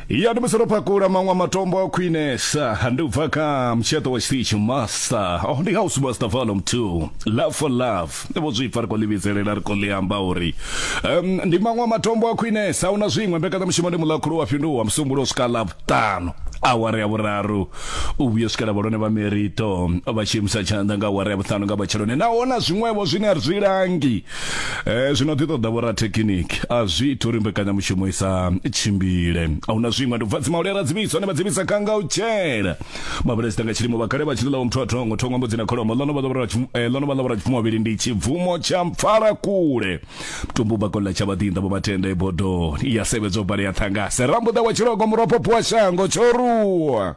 ya ndi musi ro pakula maṅwe matombo a khwinesa ndi u bva kha mutsheṱo wa tshiṱitshi master oh ndi house master volume 2 love for love ni vho zwipfa ri khou ḽi vhidzelela ri khou ḽi amba uri um, ndi maṅwe matombo a khwinesa hu na zwiṅwe mbekanyamushumo ndi muḽakhulu wa fhinduwa musumbulo u swika ḽavhuṱanu awara ya vhuraru u vhuya swikela vhalone vha merito vha tshi imisa tshanḓa nga awara ya vhuṱanu nga matsheloni naho na zwiṅwevho zwine a ri zwi langi eh zwino ḓi ṱoḓa vhorathekhiniki a zwi ita uri mbekanyamushumo i sa tshimbile a huna zwiṅwe ndi vhadzi maule ra dzivhiswa ne vha dzivhisa kha nga u tshela mabulesita nga tshilimo vha kale vha tshi ḽa muthu a thongo thongo mbudzi na kholomo ḽono vha ḽa eh, ḽono vha ḽa vhurapfumo vhavhili ndi tshibvumo tsha mpfala kule mtumbu ba kolla tsha vhaḓinḓa vho matenda e bodoni ya sevhedzo bale ya ṱhangase rambuḓa wa tshilogo muropopo wa shango tshoruwa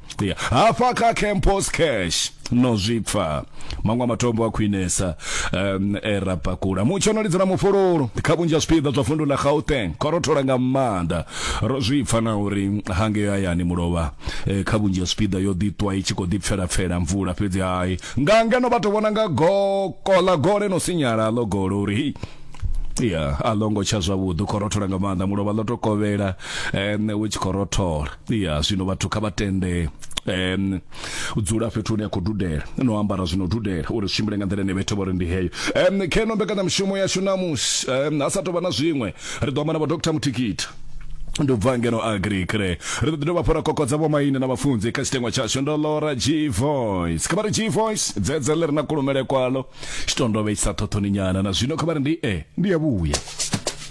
ya hafha kha campos cash no zwipfa maṅwe a matombo a khwinesa um, e ra pakula mutsho no lidzela mufhululu kha vhunzhi ha zwipiḓa zwa vundu ḽa gauteng kho rothola nga maanḓa ro zwi pfa na uri hange hayani mulovha eh, kha vhunzhi ha zwipiḓa yo ḓitwa i tshi khou ḓipfelapfela mvula fhedzi hai nga ngeno vha tou vhona nga goko ḽa gole no sinyala ḽo golo uri hei ya a longo tsha zwavhuḓi khorothola nga maanḓa mulovha ḽo to kovhela um u tshi khorothola ya zwino vhathu kha vha tende um u dzula fhethu hune ya khou dudela no ambara zwino dudela uri zwi tshimbile nga nḓila ine vhethu vha ri ndi heyo um kheno mbekanyamushumo yashu namusi um ha sa tou vha na zwiṅwe ri ḓo amba na vha dr muthikita ndi u bva ngeno agrikre ri ḓo ḓi dovha fhora kokodza vhomaine na vhafunzi kha tshitengwa tshashu ndo lora g voice kha vha ri g voice dzedze ḽi re na kulumele kwalo tshitondovhe tshisa ṱhoṱhoni nyana na zwino kha vha ri ndi e ndi ya vhuya